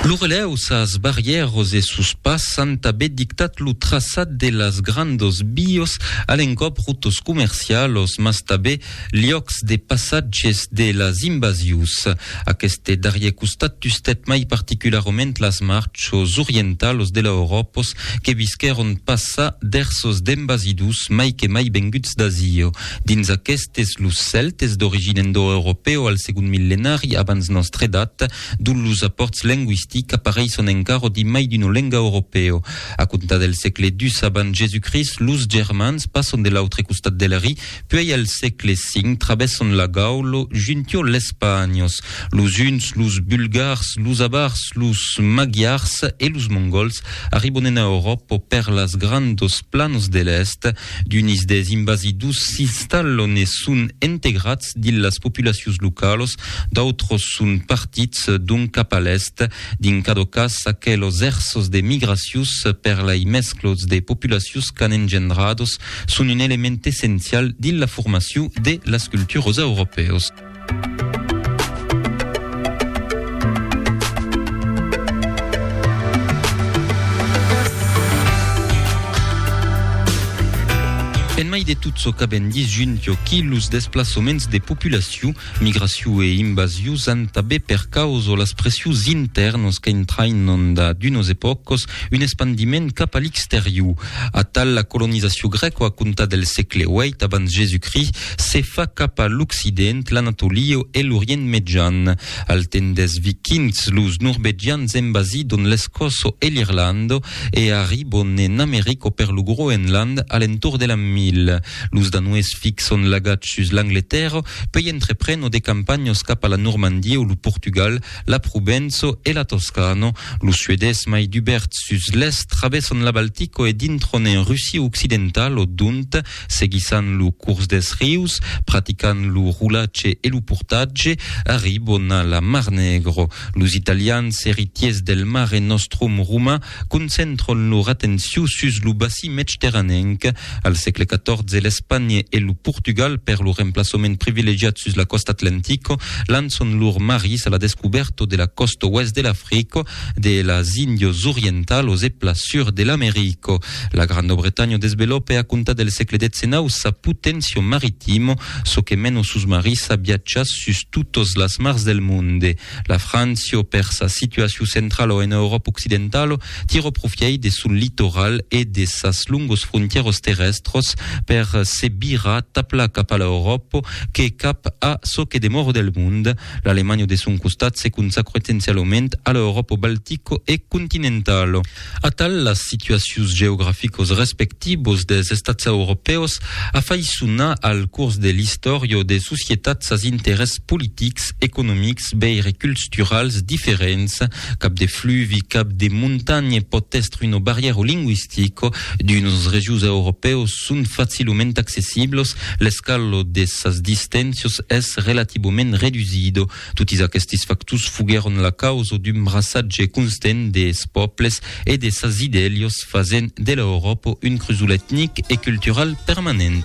Lo relèu, sas barrièros e sos pas an tabé dictat lo traçat de las grandos vios, a l'encòp rotos comercialos, mas tabé liòcs de passatges de las invasius. Aqueste darrier costat tustèt mai particularament las marchos orientalos de l'Euròpos que visquèron passar ders sos dembasidus mai que mai venguts d'Azio. Dins aquestes, los Cèltes, d'origina indoeuropèo al segond millenari abans nòstra edat, dont los apòrts lengüistics apareisson encara dimai d'una lenga europèo. A comptar del sègle ii abans Jesucrist, los Germans passon de l'autre costat del Ri, puèi al sègle V travèsson la Gaula juntiò l'Espanhos, los Huns, los Bulgars, los Avars, los Magyars e los Mongols arribon ena Euròpa per las grandos planos de l'Èst, D'unis des invasidus s'installon e son entegrats dins las populacions localos, d'autros son partits d'ont cap a l'èst. Dins cada cas, aquelos èrsos de migracions per lai mesclots de populacions qu'an engendrados son un element essencial dins la formacion de las culturas europèos. En mai de tot çò qu'avèm dit junt aquí, los desplaçaments de populacion, migracion e invasion an tanben per causa las pressions intèrnas qu'entrainan da d'unas epòcas un espandiment cap a l'exterior. Atal, la colonizacion grèca a comptar del sègle viii abans Jesucrist Se fa cap a l'occident, l'Anatolio e l'Orient Mejan. Al temps des Vikings, los Norvegians envasidon l'Escòço e l'Irlanda e arribon en Americo per lo Groenland a l'entorn de l'an 1000. Los Danois fixon l'agatge sus l'Angletèrra, puèi entrepreno de campanhas cap a la Normandia o lo Portugal, la Provença e la Toscana. Los Suedés, mai dubèrts sus l'èst, travèson la Baltica e dintron en Russia occidentala, dont Seguissant lo cors deth rius, praticant lo rolatge e lo portatge, arribon a la Mar Negro. Los italians, eritiers del Mare Nostrum roman, concentron lor atencion sus lo bací medterranenc. Al sègle XIV, l'Espanha e lo Portugal, per lor emplaçament privilegiat sus la còsta atlantica, lançon lors maris a la descubèrta de la còsta oèst de l'Africa, de las Índias Orientalas e plan sur de l'America. La Grandobretanha desvelòpe a comptar del sègle xix sa poténcia maritima, çò que mena sos marís a viatjar sus totas las mars del monde. La Frància, per sa situacion centrala ena Euròpa occidentala, tirò profièit de son litoral e de sas longos frontièras terrèstras per se virar tabla cap a l'Euròpa que cap a çò que demòra del monde. L'Alemanha de son costat se consacrò essencialament a l'Euròpa baltica e continentala. Atal, las situacions geograficos respectivos des estats europèus a fai sonar al curs de l'istòria de societats as interès politics, economics, veire culsturals diferents, cap de fluvi, cap de montanha pòt èstre una barrièra lingüistica, d'unes regions europèus son facilament accessiblos, l'escala de sas distensions es relativament redusido. Totis aquestes factors foguèron la causa d'un braçatge constent des pòbles e de sas idèlios, fasent de l'Euròpa un crusol etnic e cultural permanent.